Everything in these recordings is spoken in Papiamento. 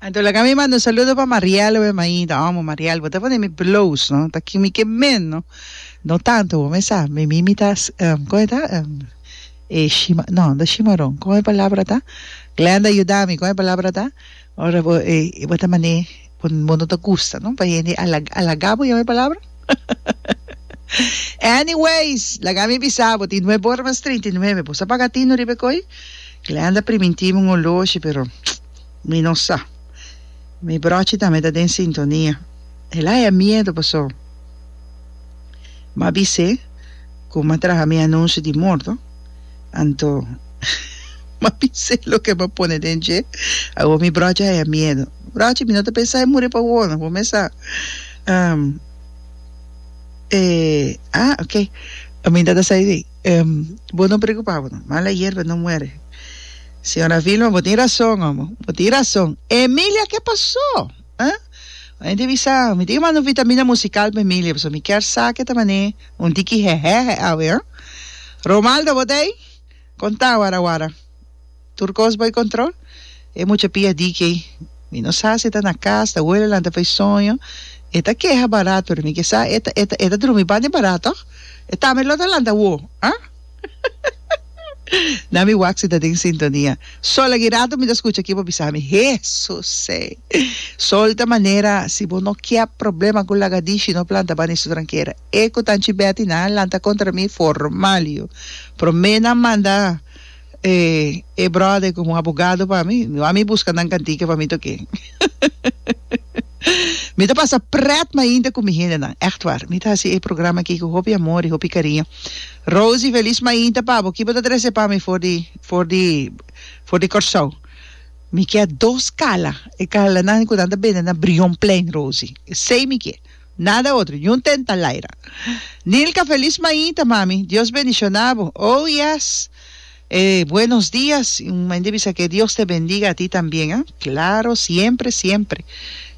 Anto laga mi manda un saludo pa Mariel we Maida omo Mariel bo ta pone mi bloos no ta kimi ke men no no tanto bo me sa mi mi mi ta um, kome ta um, e shima no no shimaron kome palabra ta Glenda yuda mi kome palabra ta ora bo e bo ta mane bo bo no ta gusta no pa hende a laga bo yame palabra Anyways, laga mi bisa bo, tin nueve ora mas treinta i nueve, bo sa paga tino riba e koi? Glenda primintivo un oloshi, pero mi no sa. Mi brochi tambe ta den sintonia. El haya miedo paso m'a bis'é cu m'a traha mi anuncio di morto, anto m'a bis'é loke m'a pone den dje, awor mi brochi haya miedo. Brochi, mi no ta pensa e muri pa awor no, bo mes sa. Um, e, ah, ok. Aminta ta sai di. Um, bo no preocupa bo no. Mala hierba no muere. Señora Vilma, bo tin razón, omo. Bo tin razón. Emilia, ke pasó? Huh? Un hende bisa, mi tin ke manda un vitamina musical pa Emilia, pasobra mi kier sa ke ta man'é un tiki hehehe awe, huh? Romaldo, bo ta ei? Kontá awara awara. Tur kos bai kontrol. E mucha pia dike, Mi no sa si e ta na kas, ta wele lanta pa e soño. E ta keha barat, pero mi ke sa e ta e ta e ta drumi banda e barat tòg. E tambe lo ta lanta woo, ah? Na mi wak si ta den sintonia. Sol a girato mi ta skucha kiba bisa mi, Hesusey! Sol ta manera, Si bo no kier problema ku lagadishi, no planta banda e strankera. E ku ta anchi bèti nan a lanta kontra mi formal yu. Promé nan manda. E e brother como abogado pa mi, no a mi busca nan cantica pa mi ta oke. Mi ta pasa pret mainta cu mi hende nan, echt war. Mi ta haci e programa aki cu hopi amor y hopi cariño. Rosie, feliz mainta pa bo. Ki bo ta trece pa mi for di for di for di Corsou? Mi kier dos cala, e calanan cu nan ta bende na Brion Plein, Rosie. Esey mi kier. Nada otro, ni un tenta laira. Nilka felis maita mami Dios bendiciona bo oh yes e buenos dias y un mende bisa que Dios te bendiga ati tambien ah claro siempre siempre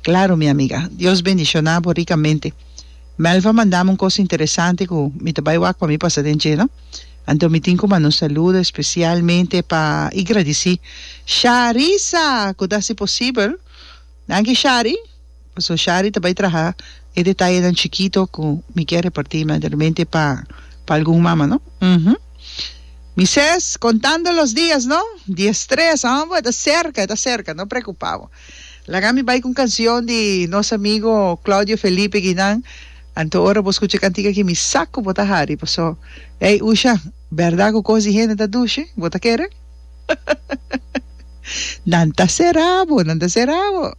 claro mi amiga Dios bendiciona bo ricamente Melva mandami un cosa interesante cu mi ta bay wak pa mi pasa den dje no anto mi tin cu manda un saludo especialmente pa y gradici Sharisa cu ta haci posibel danki Shari. Paso Shari ta bai traha e detayenan chikito ku mi ke reparti me realmente pa pa algun mama no uhum mi ses kontando los dias no di e stres hombwe ta serka e ta serka no preokupa bo laga mi bai ku un kansion di nos amigo Claudio Felipe Guinan anto ora bo skucha e kantik aki mi sa ku bo ta hari paso ey Usha bèrda ku kos di hende ta dushi bo ta kere nan ta sera bo nan ta sera bo.